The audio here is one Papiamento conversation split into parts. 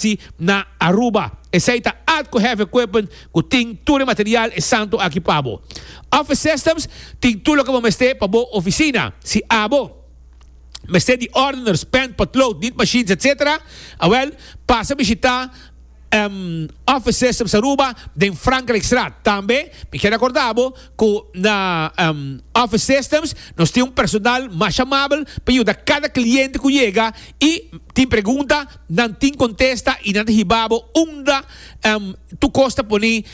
si na Aruba. Esei ta atco heavy equipment cu tin tur e material e santo aki pa bo. Office systems, tin tur loke bo mester pa bo oficina. Si abo mester di ordeners, pen, potlood, nit machines, etc. Awel, pasa bishita Office Systems Aruba den Frankrijkstraat. Tambe mi kier acorda bo cu na Office Systems nos tin un personal mas amabel pa yuda cada cliente cu yega y tin pregunta. Nan tin contesta y nan ta hiba bo unda tu cos ta pone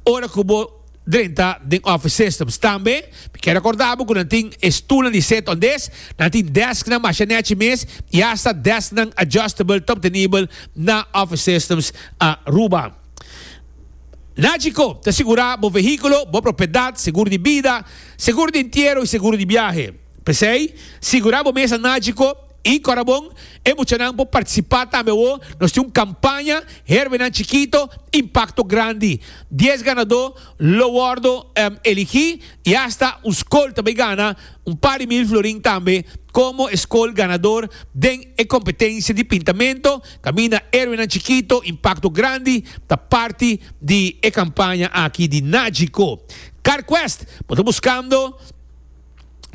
ora cu bo drenta den office systems. Tambe mi kier recorda bo cu nan tin e stoelnan di sit-on-disk, nan tin desknan masha nechi mes y hasta desknan adjustable ta obtenibel na office systems Aruba. Nagico ta sigura bo vehiculo, bo propiedad, seguro di bida, seguro di entiero y seguro di biahe. P'esey, sigura bo mes na Nagico. I kora bon e muchanan por partisipá tambe awo, nos tin un kampaña Herbenan Chikito, Impakto Grandi. Dies ganadó lo wòrdu eligí i asta un skol ta bai gana un par di mil florin tambe komo e skol ganador den e kompetensia di pintamentu. Kaminda Herbenan Chikito, Impakto Grandi ta parti di e kampaña aki di Nagico Car Quest. Bo ta buskando.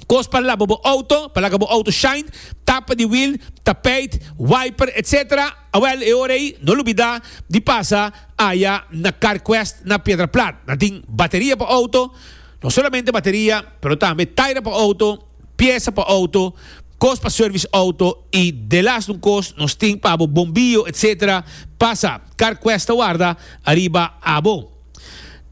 kos pa laba bo outo, pa laga bo outo shine, tapa di wiel, tapijt, wiper etc. Awel e ora ei no lubida di pasa aya na CarQuest na Piedra Plat. Nan tin bateria pa outo, no solamente bateria pero tambe taira pa outo, piesa pa outo, kos pa service outo y delas un kos nos tin pa abo bombillo etc. Pasa CarQuest ta warda ariba abo.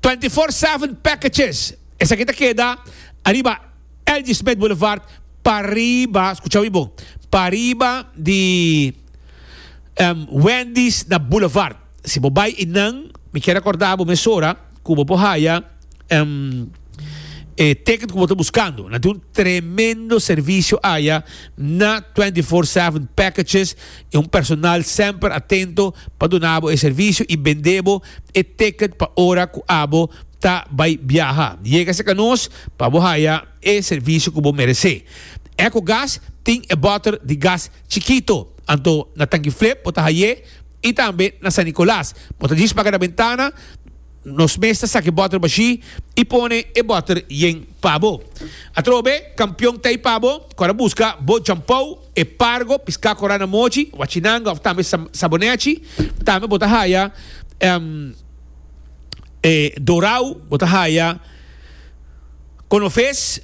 Twentyfour Seven Packages, esaki ta keda ariba Elgie Smith Boulevard pariba, skucha wi bo, pariba di Wendy's na Boulevard. Si bo bai einan, mi ke rekorda bo mesora ku bo por haya e ticket ku bo ta buskando. Nan tin un tremendo servisio aya na Twentyfour Seven Packages. e un personal semper atento pa duna bo e servicio y bende bo e ticket pa ora cu abo ta bay biaha. Yega cerca nos pa bo haya e servicio cu bo merece. Ecogas tin e boter di gas chikito, anto na Tanguiflip bo ta haye y tambe na San Nicolas. Bo ta djis paga na bentana, nos mes ta saca e boter bashi y pone e boter yen pa bo. Atrobe, campeon ta ay pa bo cu a ta busca bo djampou. E pargo, piská korá na mochi, wachinanga òf tambe sabonèchi. Tambe bo ta haya e dorau, bo ta haya konofes.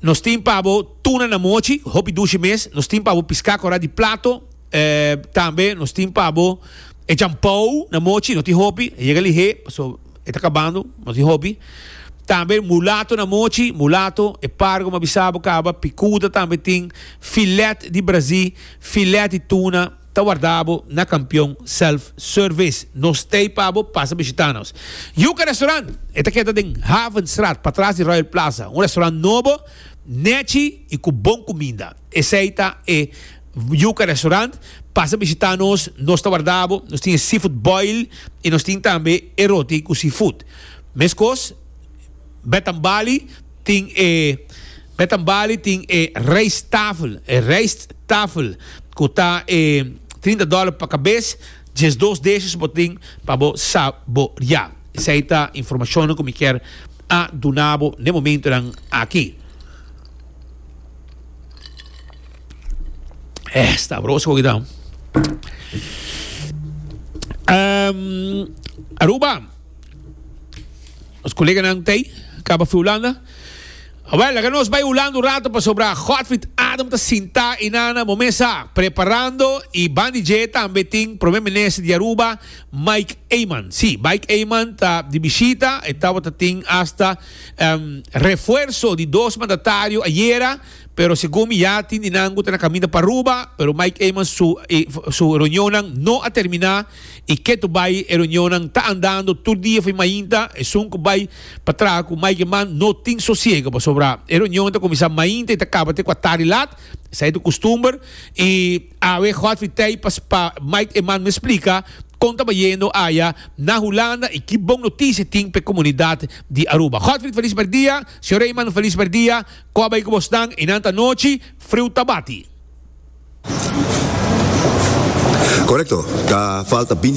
Nos tin pa bo tuna na mochi, hopi dushi mes. Nos tin pa bo piská korá di plato. Tambe nos tin pa bo e jampou na mochi, no tin hopi, a yega lihé. E ta kabando, mas di hopi. Tambe mulato na mochi, mulato, e pargo m'a bisa bo kaba, pikuda tambe tin, filet di brazí, filet di tuna, ta warda bo na Kampion Self Service. Nos t'ei pa bo pasa bishita nos. Yuca Restaurant, e ta keda den Havenstraat patras di Royal Plaza, un restaurant nobo, nechi i ku bon kuminda. Esei ta e. Yuca Restaurant, pasa bishita nos, nos ta warda bo, nos tin e seafood boil y nos tin tambe e roti cu seafood. Mescos Bed and Bali tin e Bed and Bali tin e rijsttafel, e rijsttafel cu ta e trinta dollar pa cabes, diesdos dishes bo tin pa bo saboria. Esey ta informacionnan cu mi kier a duna bo n'e momentonan aki. Eh, sabroso hoy dan. Um, Aruba. Ons collega nan tei, caba fi Holanda. Wel, laga nos bij Holanda un rato para sobra Godfried Adam te sinta y nana momesa preparando y bandi je tambe tin primer minister de Aruba Mike Eman. Sí, Mike Eman ta di visita, estaba te tin hasta um, refuerzo di dos mandatario ayera Pero segun mi ya tin di nan cu ta na caminda pa Aruba, pero Mike Eman su su reunionnan no a termina y ke to bay e reunionnan ta andando tur dia fo'i mainta, esun cu bay pa traha cu Mike Eman no tin sosiego pasobra e reunion ta cuminsa mainta y ta caba te cua tardi laat, esai ta custumber y awe Godfrey Tey pa pa Mike Eman mes splica con ta bayendo aya na Hulanda y ki bon noticia tin p'e comunidad di Aruba. Godfrey feliz mercdia, señor Eman feliz mercdia, Cu a bay cu bos nan y nan ta nochi, friu ta bati. Correcto, ta falta binti.